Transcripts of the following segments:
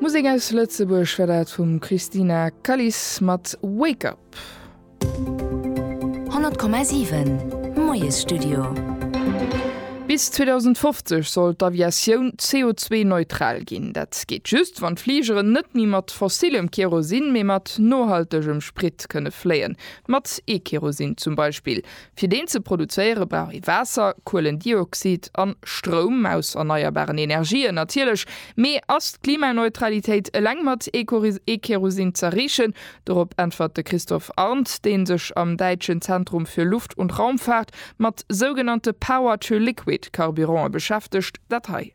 Musek aus Lëtzebuerg war dat vum Christina Kalis mat Wake Up. 100,7 Moiesstudio. Bis 2050 soll d'Aviatioun CO2-neutral ginn. Dat geet just, wann d'Fligeren net méi mat fossilem Kerosin, mee mat nohaltegem Sprit kënne fléien, mat E-Kerosin zum Beispill. Fir deen ze produzéiere brauch ee Waasser, Kuelendioxid a Stroum aus erneierbaren Energien, natierlech. Mee ass d'Klimaneutralitéit eleng mat E-Kerosin z'erreechen? Dorop äntwert de Christophe Arndt, dee sech am däitschen Zentrum für Luft und Raumfahrt mat sougenannte Power-to-Liquid-Carburanten beschäftegt, dat hei.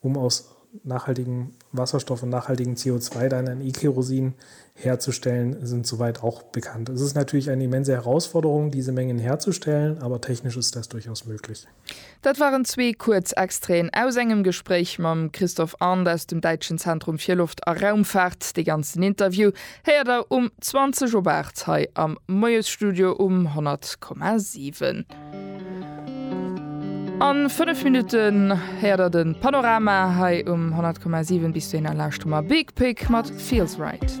um aus nachhaltigem Wasserstoff und nachhaltigem CO2 dann ein E-Kerosin herzustellen, sind soweit auch bekannt. Es ist natürlich eine immense Herausforderung, diese Mengen herzustellen, aber technisch ist das durchaus möglich. Dat waren zwee kuerz Extraiten aus engem Gespréich mam Christophe Arndt aus dem däitschen Zentrum fir Loft a Raumfaart. Dee ganzen Interview héiert der um 20 op 8 hei am Moiesstudio um 100,7. An 5 Minutten héiert der den Panorama hei um 100,7 bis du en a lauschter mer Big Pig mat Feels Right.